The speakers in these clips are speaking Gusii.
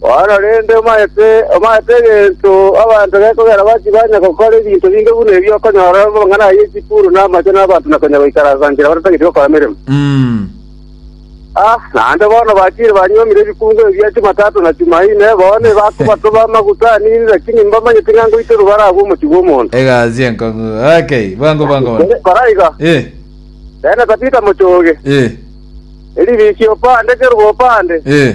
Bono rende omaete, omaete egento abanto gekogera bachie banya gokora ebinto binge buna ebi okonyora amang'ana ayio chikuru na amache na abanto na konya goikaransa nchera batatagete gokora emeremo. Mm. Ah, naende bono bachire banyuomire ebikungo ebi bia Chumatato na Chumaine, bono ebakobatoba amaguta anini, lakini mbamanyete ng'a ngoitorwa bare agwo omochie bw'omonto. Egasi enkong'u. Okay, bwango bwango bono. Kore- Koraiga, Eh, rende Tabita mochoge, eh, eribisi opande kerwa opande, eh.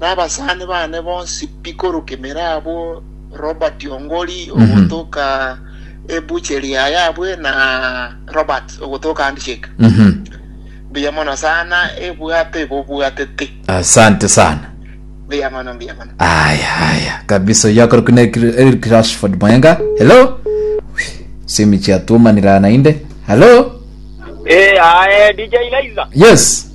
na abasani bane bonsi pi korwa emera abwo Robert Ongori ogotoka ebucheri yaye abwe na Robert ogotoka handshake mbuya mono sana ebwato ebobwatete asante sana mbuya mono mbuya mono aya aya kabisa oyo akorokwa na Eric- eric rashford mayenga hello simi chiatumanira nainde hello Eh, aye DJ Liza. yes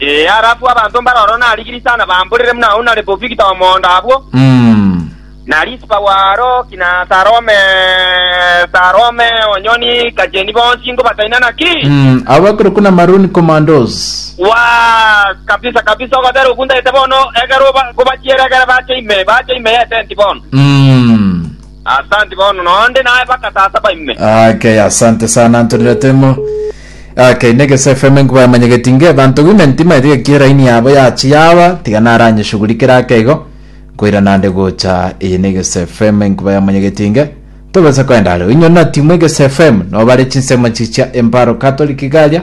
Ee, ara abwo abanto mbare ororo na Rigirisa na Bamburire buna agwo na Rebofigita omondo abwo, na Risipa bw'aro ki, na Sarome, Sarome onyoni gacheni bonsi ngobataina naki? Abakoro kuna Maroon Commandos. Waas, kabisa kabisa, ogotera okuntaete bono, ekero oba- kobachiera ekero bache ime, bache ime y'etenti bono. Mm. Asanti bono nonde naye baka tata baime. Okay, asante sana Antonio Temo. Okay, Negese FM nkuba yamanyegeti nge banto women timaete gekie raini yabo yachi yawa tiga naranyeshughulikire akeigo koira nande gocha iyi Negese FM nkuba yamanyegeti nge tobesa kwenda are inyo na timu Egese FM nobare chinsemo chichia emparo Catholic garia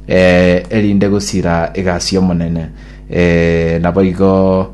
eh, erinde gosira egasi omonene eh, nabo igo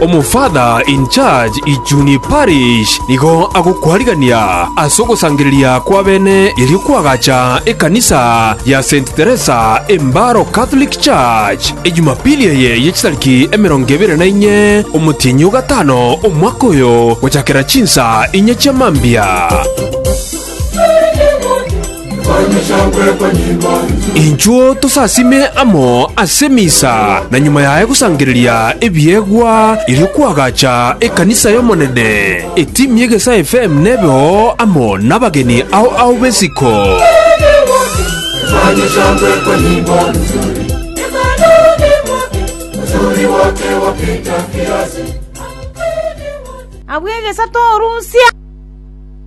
Omofather in charge Ijuni Parish nigo agokwarigania ase ogosangereria kw'abene erio kw'agacha ekanisa ya Saint Teresa Embaro Catholic Church, e Jumapili eye ye chitariki emerongo ebere na inye omotienyi o gatano omwaka oyo, gochakera chinsa inye chia mambia. Inchuo tosasime amo ase emisa, na nyuma yaye gosangereria ebiegwa erio kwagacha ekanisa y'Omonene. Etimu y'egesae FM nebe oo amo nabageni ao ao b'esiko. Abwo egesato orusia.